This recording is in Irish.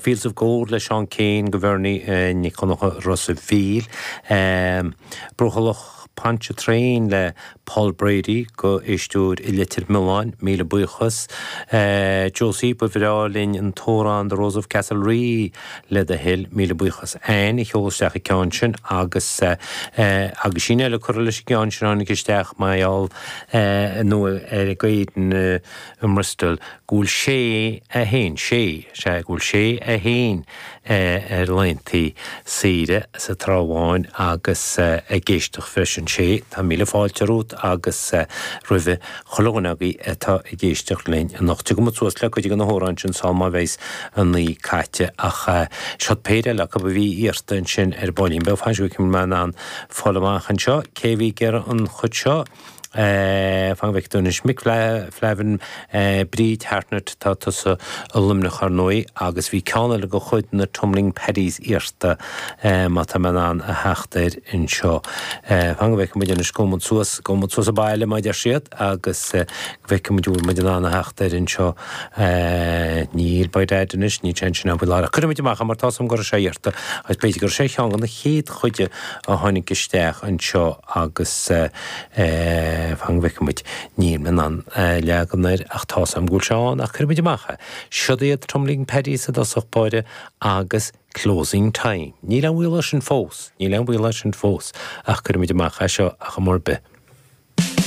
Fields of Gold le Seán Keane do Bhernie Nic Dhonncha Ros a' Mhíl, Brothallach Pontchartrain le Paul Brady do éisteoir i Leitir Mealláin, Míle Buíochas Josie, ba bhreá linn an t-amhrán The Rose of Castlerea le The Hill, Míle Buíochas Anne a sheol isteach an ceann sin agus aguisín le cur leis an gceann sin a tháinig isteach mar gheall ar an gcéanna. i mBristol go bhfuil Seán, sea, sea, go bhfuil Seán ar laethanta saoire sa Trá Bháin agus ag éisteacht freisin, sé, tá míle fáilte romhat agus roimhe chuile dhuine agaibh atá ag éisteacht linn anocht. Tiocfaimid suas le cuid de na hamhráin sin sul má bheidheas an naoi caite ach seo péire eile acu a bhí iarrta ansin ar ball beag. Fan go bhfeicfidh mé an bhfuil mé in ann fáil amach anseo cé a bhí ag iarraidh an chuid seo. Fan go bhfeicfidh mé anois. Mick Flavin, Bríd Hartnett, tá tusa i Luimneach, ar ndóigh, agus bhí ceann eile de chuid na Tumbling Paddies iarrta, má tá mé in ann a theacht air anseo. Fan go bhfeicfidh muid anois. Gabhann muid suas, gabhann muid suas abhaile, mar a deir siad, agus go bhfeicfidh muid an bhfuil muid in ann a theacht air anseo. Níl Bite Ait anois, níl sé ansin ná fuil, a Lara. Cuirfidh muid amach é, mar tá súil agam go raibh sé iarrta, agus b'fhéidir go raibh sé ar cheann de na chéad chuid de. a tháinig isteach anseo agus fan go bhfeice muid, níl mé in ann leagan air ach tá's a'm go bhfuil sé ann ach cuirfidh muid amach é. Siod iad Tumbling Paddies i dtosach báire agus Closing Time. Níl aon bhaol air sin fós, níl aon bhaol air sin fós ach cuirfidh muid amach é seo ach go háirithe.